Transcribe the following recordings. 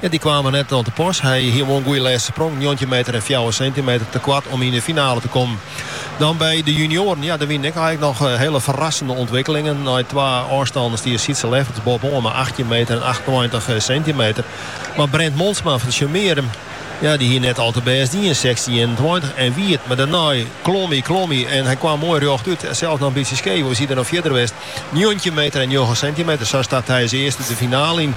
Ja, dy kwaam der net oan te pas. Hy hie wol in goede lêste sprong, njoggentjin meter en fjouwer sintimeter, te koart om yn de finale te kommen. Dan by de junioaren, ja, der wienen ek eink noch hiele ferrassende ûntwikkelingen. Nei twa ôfstanden stie Sietse Lefferts boppe-oan mei achttjin meter en achtentweintich sintimeter. Mar Brent Montsma fan Tsjummearum, ja, dy hie net al te bêst dien, sechstjin ienentweintich en wie it. Mar dêrnei klom hy, klom hy en hy kaam moai rjochtút. Sels in bytsje skeef, oars hie er noch fierder west, njoggentjin meter en njoggen sintimeter. Sa start hy as earste de finale yn.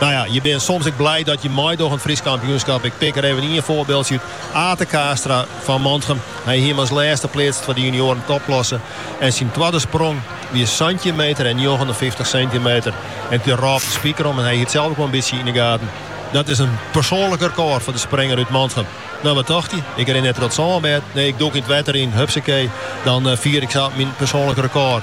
Nou ja, je bin soms ek blij dat je meidogge oan in Frysk kampioenskap. Ik pik der even ien foarbyldsje út. Ate Kaastra fan Mantgum. Hy hie him as lêste pleatst foar de junioaren topklasse. En syn twadde sprong wie santjin meter en njoggenenfyftich sintimeter. En it wie der op 'e spiker om en hy hie it sels ek wol in bytsje yn de gaten. Dat is in persoanlik rekôr foar de springer út Mantgum. Nou, wat tocht hy? Ik rin net troch it sânbêd, nee, ik dûk yn it wetter yn, hupsakee, dan fier ik sa myn persoanlik rekôr.